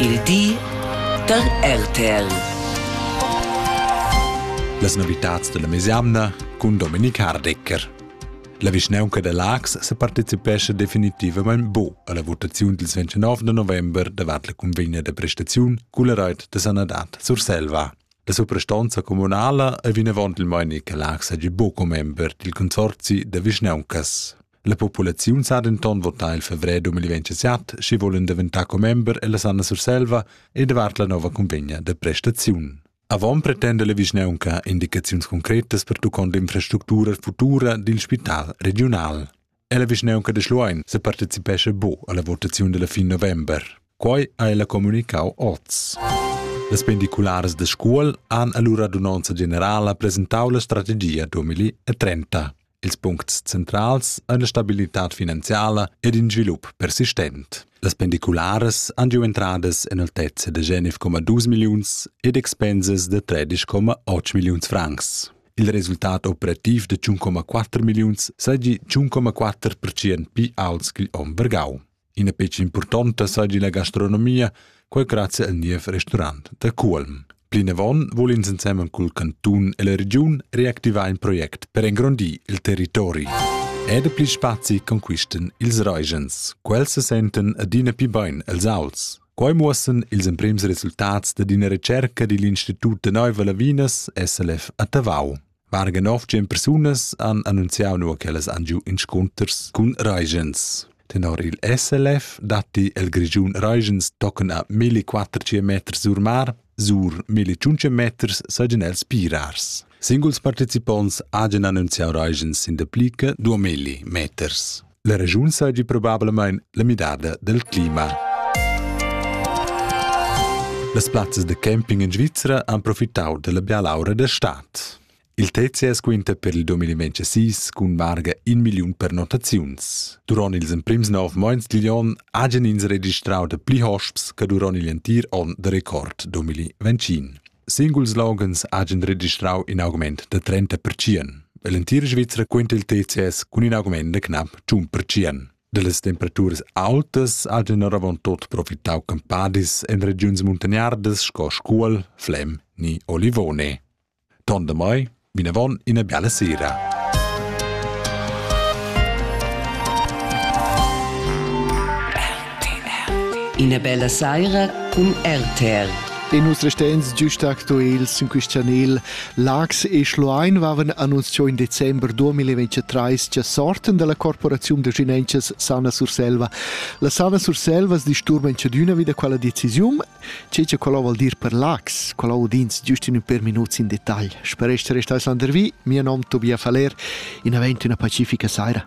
il di da RTL. Las novitads della mesemna cun Dominik Hardecker. La vischnaunca da Lax se partecipescha definitivament bu alla votaziun dils 29 de november davart la convegna de prestaziun culla reit de sanadad Surselva. La suprastonza comunala è vinavant il Meinica Lax hagi bu commember dil consorzi da vischnauncas. La populaziun sa denton votar il fevrer 2027, sche volen daventar commember ella Sanna Surselva e davart la nova convegna de prestaziun. Avon pretenda la vischnaunca indicaziuns concretas per tuccond infrastructura futura dil spital regional. Ella vischnaunca de Schluein se partecipesce bo alla votazione della fin november. Quai ha ella comunicau oz. Las pendiculares de Scuol han allura d'un'onza generala presentau la strategia 2030. Ils puncts centrals ein la stabilitad finanziala ed in svilup persistent. Las pendicularas han giu entradas en altezza da 19,2 milliuns ed expensas da 13,8 milliuns francs. Il resultat operativ de 1,4 milliuns seigi 1,4% pli aults che onn vargau. Ina fetg impurtonta saigi la gastronomia, quei grazia al niev restaurant da Cuolm. Plinavon vul ins ensemen cul cantun e la regiun reactivar in project per engrondir il territori. Ed pli spazi conquisten ils Regens. Quels se senten adina più bein els auls. Quei muossen ils emprems resultats da d'ina recerca digl Institut de Neuve Lavinas SLF a Tavau. Varga nov tschien persunas han annunziau nua ch'ellas han giu inscunters cun Reigens. Tenor il SLF datti el Grischun Reigens tochen a 1400 meters sur mar, sur 1500 meters seigien els pirars. Singuls participonts hagen annunziau Reigens in de plica 2000 meters. La regiun seigi probablamein la midada del clima. Las plazzas de camping in Svizzera han profitau della bialaura de stat. Il TCS quinta per il 2026 cun varga in million pernotaziuns. Duron ils emprims nov moins digl on hagen ins registrau de pli hosps che duron igl entir on de record 2025. Singuls loghens hagen registrau in augment da 30%. L'entir Svizra quenta il TCS cun in augment de knapp 1%. Dallas temperaturas altas hagen oravontot profitau campadis en regiuns muntagnardas sco Scuol, Flem ni Olivone. Tondemai Vinavon ina biala sera. Ina bella saira cun RTR. E nus restens giust actuals in quist chanel. Lax e Schluein vaven annunzio in december 2023 cha sorten dalla corporaziun de Ginenchas Sana Surselva. La Sana Surselva sdisturben d'üna vida quella decisiun Tge che quello vuol dir per Lax, quello udins giust in per minuts in detagl. Spereste restaes landervi, mio nom Tobias Faller, in avent una pacifica saira.